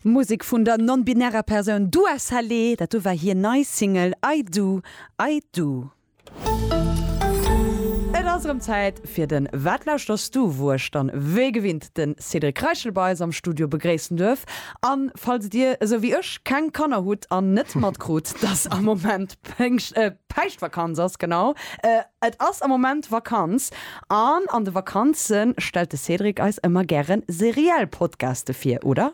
Musek vun der non-binärer Persoun Dua Saleh, dat do war hir nei Single I Do, I Do. Et ass erëm Zäit fir den Wat lauschters du? wou ech dann wéi gewinnt den Cédric Reichel bei eis am Studio begréissen duerf. An falls dir esou wéi ech keng Kanner hutt an net matkrut dass am Moment Péngscht, Päischtvakanz ass, genau et ass am Moment Vakanz, An an de Vakanze stellt de Cédric eis ëmmer gären seriell Podcaste vir, oder?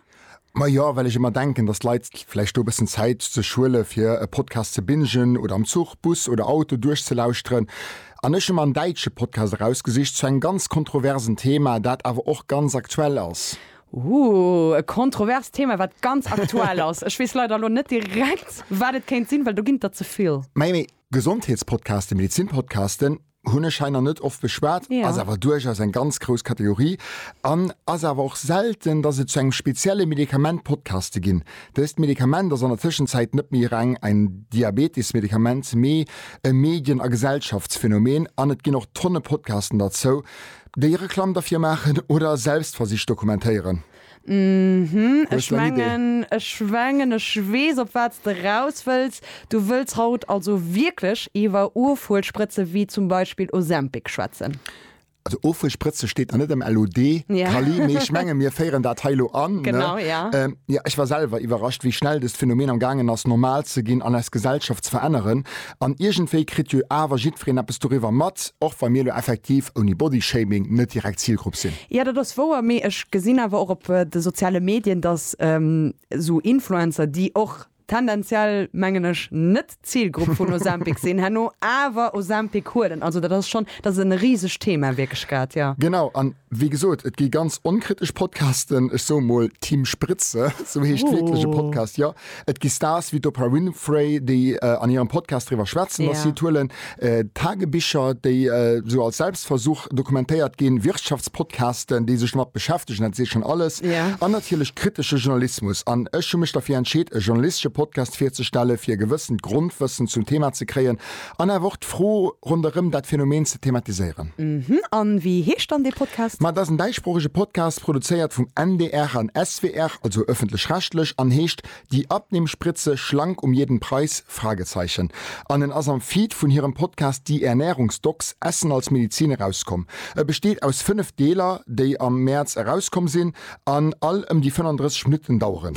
Majo, well ech ëmmer denken, dass d'Leit vläicht do e bëssen Zäit sech huele fir e Podcast ze bingen oder am Zuch, Bus oder Auto duerchzelauschteren. An ech hu mer en däitsche Podcast erausgesicht zu engem ganz kontroversen Thema, dat awer och ganz aktuell ass. Ooh, e kontroverst Thema, wat ganz aktuell ass. Ech weess leider elo net direkt, wat et kéint sinn, well do ginn et der ze vill. Majo, mee Gesondheetspodcasten, Medizinpodcasten, Hunn ech hei nach net oft beschwat, ass awer duerchaus eng ganz grouss Kategorie an ass awer och selten, dass et zu engem spezielle Medikament Podcaste ginn. Dëst Medikament ass an der Tëschenzäit net méi reng en Diabetes-Medikament, mee e Medien a Gesellschaftsphänomen an et ginn och Tonne Podcasten derzou, déi Reklamm derfir maachen oder Selbstversicht dokumentéieren. Hm, ech mengen, ech mengen ech weess op wat s de raus wëlls. Du wëlls haut also wierklech iwwer Ofhuelsprëtze wéi zum Beispill Ozempic schwätzen? Also Ofhuelsprëtze steet nach net am LOD, Kali, mee ech menge mir féieren dat hei elo an, ne? Jo, ech war selwer iwwerrascht, wéi schnell dëst Phänomen am gaangen ass normal ze ginn an eis Gesellschaft ze veränneren. An iergendwéi kritt jo awer jiddwereen eppes doriwwer mat, och wa mir elo effektiv, ouni Bodyshaming, net direkt d'Zilgrupp sinn. Jo, dat ass wouer, mee ech gesinn awer och op de soziale Medien, dass esou Influencer, déi och tendenziell, mengen ech, net d'Zilgrupp vun Ozempic sinn, herno awer Ozempic huelen. Also dat ass schonn, dat ass e risegt Thema wierklech grad, jo. Genau, a wéi gesot, et gi ganz onkritesch Podcasten, ech soe mol Team Spritze, esou heescht wierklech e Podcast, jo. Et gi Stars wéi d'Oprah Winfrey, déi an hirem Podcast driwwer schwätzen, datt si et huelen, Tagebicher, déi esou als Selbstversuch dokumentéiert ginn, Wirtschaftspodcasten, déi sech domat beschäftegen, dat seet schonn alles, an natierlech kritesche Journalismus. An ech hu mech derfir entscheet, e journalistesche Podcast virzestellen, fir e gewëssent Grondwëssen zum Thema ze kréien, An awer och d'Fro ronderëm dat Phänomen ze thematiséieren. Mhm. An wéi heescht dann dee Podcast? Ma et ass en däitsproochege Podcast, produzéiert vum NDR an SWR, also ëffentlech-rechtlech, an heescht Die Abnehmspritze, Schlank um jeden Preis? Fragezeichen. An en ass am Feed vun hirem Podcast Die Ernährungsdocs, Essen als Medizin, erauskomm. E besteet aus 5 Deeler, déi am Mäerz erauskomm sinn an all ëm déi 35 Minutten daueren.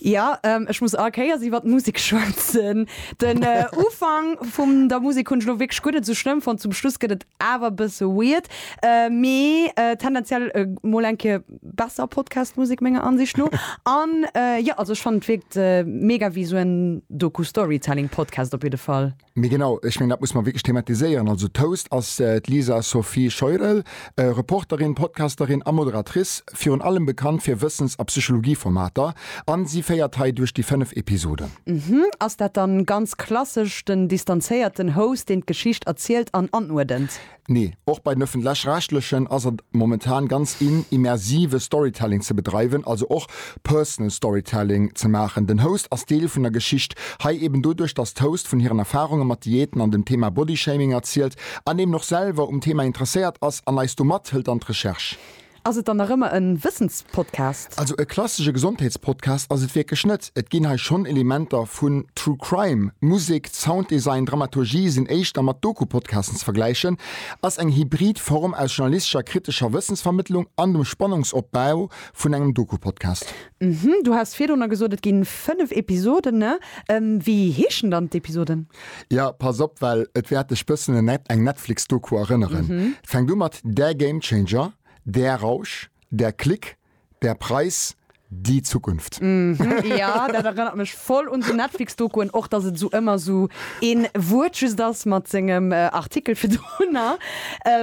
Jo, ech muss all Kéiers iwwert d'Musek schwätzen. Den Ufank vum der Musek hunn ech elo wierklech guer net esou schlëmm fonnt, zum Schluss gëtt et awer e bësse weird, mee tendenziell mol eng Kéier besser Podcast-Musek menger Ansicht no. An jo, also ech fannen et wierkt mega wéi esou en Doku-Storytelling-Podcast op jidde Fall. Mee genau, ech mengen, dat muss mer wierklech thematiséieren. Also d'Host ass d'Lisa Sophie Scheurel, Reporterin, Podcasterin a Moderatrice, virun allem bekannt fir Wëssens a Psychologie-Formater. A si féiert hei duerch déi fënnef Episoden. Uhmm, ass dat dann ganz klassesch den distanzéierten Host, deen d'Geschicht erzielt an anuerdent? Nee, och bei den Ëffentlech-Rechtlechen ass et momentan ganz in, immersive Storytelling ze bedreiwen, also och Personal Storytelling ze maachen. Den Host ass Deel vun der Geschicht, hei eben doduerch, dass d'Host vun hiren Erfarunge mat Diäten an dem Thema Bodyshaming erzielt an eben och selwer um Thema interesséiert ass an eis do mathëlt an d'Recherche. Ass et dann nach ëmmer en Wëssenspodcast? Also e klassesche Gesondheetspodcast ass et wierklech net. Et ginn hei schonn Elementer vun True Crime. Musek, Sounddesign, Dramaturgie sinn éischter mat Doku-Podcasten ze vergläichen. Ass eng hybrid Form aus journalistescher kritescher Wëssensvermëttlung an dem Spannungsopbau vun engem Doku-Podcast. Du has virdrunner gesot, et ginn 5 Episoden. Wéi heeschen dann d'Episoden? Ja, pass op, well et wäert dech bëssen un eng Netflix-Doku erënneren. Fänkt u mat Der Gamechanger, Der Rausch, Der Klick, Der Preis, Die Zukunft. Ja, dat erënnert mech voll un sou Netflix-Dokuen, och datt et esou ëmmer esou een Wuert just ass mat sengem Artikel virdrunner.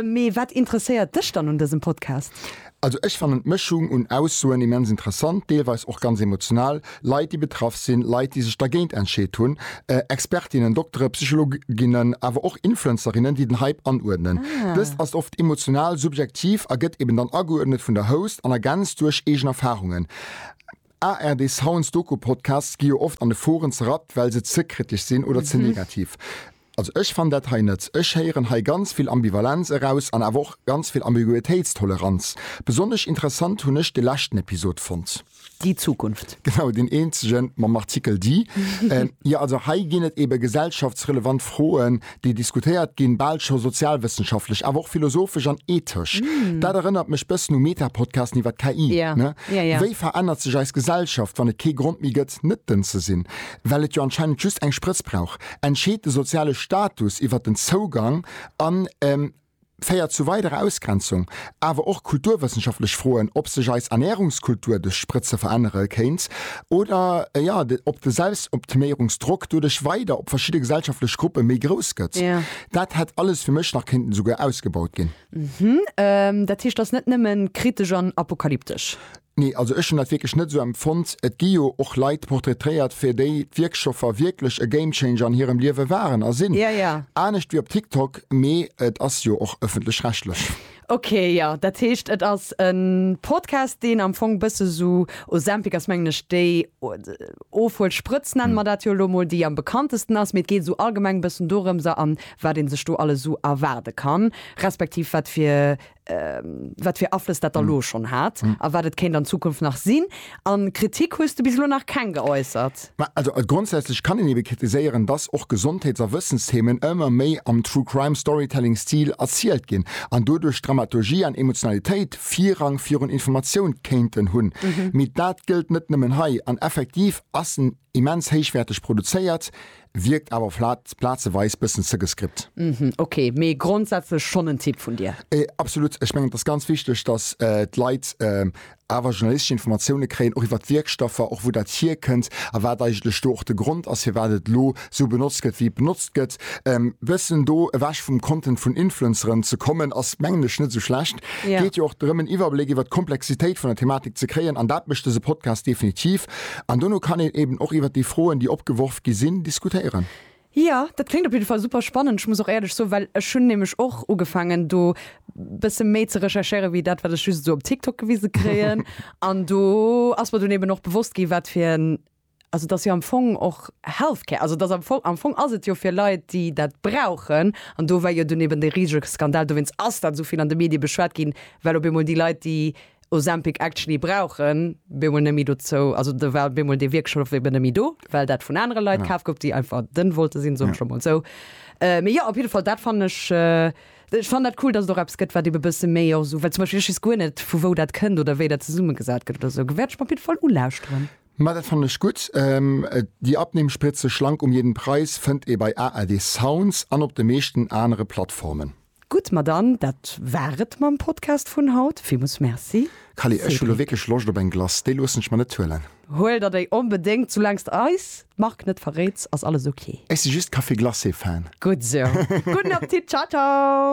Mee wat interesséiert dech dann un dësem Podcast? Also ech fannen d'Mëschung un Aussoen immens interessant, deelweis och ganz emotional, Leit déi betraff sinn, Leit déi sech dergéint entscheet hunn, Expertinnen, Doktere, Psychologinnen, awer och Influencerinnen déi den Hype anuerdnen. Dëst ass oft emotional, subjektiv a gëtt eben dann ageuerdnet vun der Host an ergänzt duerch eegen Erfarungen. ARD Sounds Doku-Podcasts gi jo oft an de Foren zerrappt well se ze kritesch sinn oder ze negativ. Also ech fann dat hei net. Ech héieren hei ganz vill Ambivalenz eraus an awer och ganz vill Ambiguitéitstoleranz. Besonnesch interessant hunn ech de leschten Episod fonnt. Déi Zukunft. Genau, deen eenzege mam Artikel Di. Jo, also hei ginn et eebe gesellschaftsrelevant Froen, déi diskutéiert ginn, bal scho sozialwëssenschaftlech, awer och philosophesch an ethesch. Dat erënnert mech bëssen u Meta-Podcasten iwwer d'KI, ne? Wéi verännert sech eis Gesellschaft, wann et kee Grond méi gëtt, net dënn ze sinn? Well et jo anscheinend just eng Sprëtz brauch. entscheet de soziale Status iwwer den Zougang a féiert zu weiderer Ausgrenzung. Awer och kulturwëssenschaftlech Froen, ob sech eis Ernärungskultur duerch d'Sprëtze verännere kéint oder, jo, ob de Selbstoptiméierungsdrock doduerch weider op verschidde gesellschaftlech Gruppe méi grouss gëtt. Dat hätt alles fir mech nach kéinten esouguer ausgebaut ginn. Dat heescht, ass net nëmme kritesch an apokalyptesch. Nee, also ech hunn dat wierklech net esou empfonnt. Et gi jo och Leit portraitréiert, fir déi d'Wierkstoffer wierklech e Gamechanger an hirem Liewe waren a sinn. Ja, ja. Anescht wéi op TikTok, mee et ass jo och ëffentlech-rechtlech. Ok, jo. Dat heescht, et ass e Podcast, deen am Fong bësse sou Ozempic ass, mengen ech, déi Ofhuelsprëtz, nenne mer dat jo elo mol, déi am bekanntesten ass. Mee et geet esou allgemeng e bëssen dorëms a wat ee sech do alles esou erwaarde kann, respektiv wat fir wat fir Aflëss dat da lo schonn hat a wat et kéint an Zukunft nach sinn. A Kritik hues de bis elo nach keng geäussert? Ma also grondsätzlech kann een ebe kritiséieren, dass och Gesondheets a Wëssensthemen ëmmer méi am True-Crime-Storytelling-Stil erzielt ginn an doduerch Dramaturgie an Emotionalitéit Virrang virun Informatioun kéinten hunn. Mee dat gëllt net nëmmen hei an effektiv ass en Immens héichwäerteg produzéiert, wierkt awer flat, plazeweis bëssen ze gescript. Mhm, ok, mee grondsätzlech schonn en Tipp vun dir? Absolut, ech mengen et ass ganz wichteg, datt d'Leit awer journalistesch Informatioune kréien, och iwwer d'Wierkstoffer, och wou dat hierkënnt a wat eigentlech do och de Grond ass, firwat et elo esou benotzt gëtt, wéi et benotzt gëtt. E bëssen do ewech vum Content vun Influenceren ze kommen, ass mengen ech net esou schlecht. Geet jo och drëm en Iwwerbléck iwwer d'Komplexitéit vun der Thematik ze kréien an dat mécht dëse Podcast definitiv. An dono kann een eben och iwwert déi Froen, déi opgeworf gi sinn, diskutéieren. Jo, dat kléngt op jidde Fall super spannend. Ech muss och éierlech soen, well ech hunn nämlech och ugefaangen, do bësse méi ze recherchéieren, wéi dat, wat ech just esou op TikTok gewise kréien. An do ass mer dunn eben och bewosst gi wat fir en, also et ass jo am Fong och Healthcare, also et ass am Fong, am Fong ass et jo fir Leit, déi dat brauchen. An do war jo dunn eben dee risege Skandal, dowéinst ass dat esou vill an de Medie beschwat ginn, well op eemol déi Leit, déi, Ozempic actually brauchen, bemol nemmi dozou, also do war bemol dee Wierkschlof eben nemmi do, well dat vun anere Leit kaf gouf, déi einfach dënn wollte sinn, soen ech lo mol esou. Mee jo, op jidde Fall, dat fannen ech, ech fannen dat cool, datt et och eppes gëtt, wat ebe bësse méi och esou, well zum Beispill ech weess guer net, vu wou dat kënnt oder wéi dat zesummegesat gëtt oder esou, wäert ech mer op jidde Fall ulauschteren. Ma dat fannen ech gutt. Die Abnehmspritze schlank um jeden Preis fënnt ee bei ARD Sounds an op de meeschten anere Plattformen. Gutt, ma dann, dat war et mam Podcast vun haut. Villmools Merci. Callie, ech hu lo wierklech Loscht op eng Glace. Déi loossen ech mer net huelen. Huel der déi onbedéngt, soulaangs de eis d'Mark net verréits, ass alles ok. Ech si just Café Glacé Fan. Gutt sou. Gudden Apptit. Ciao ciao.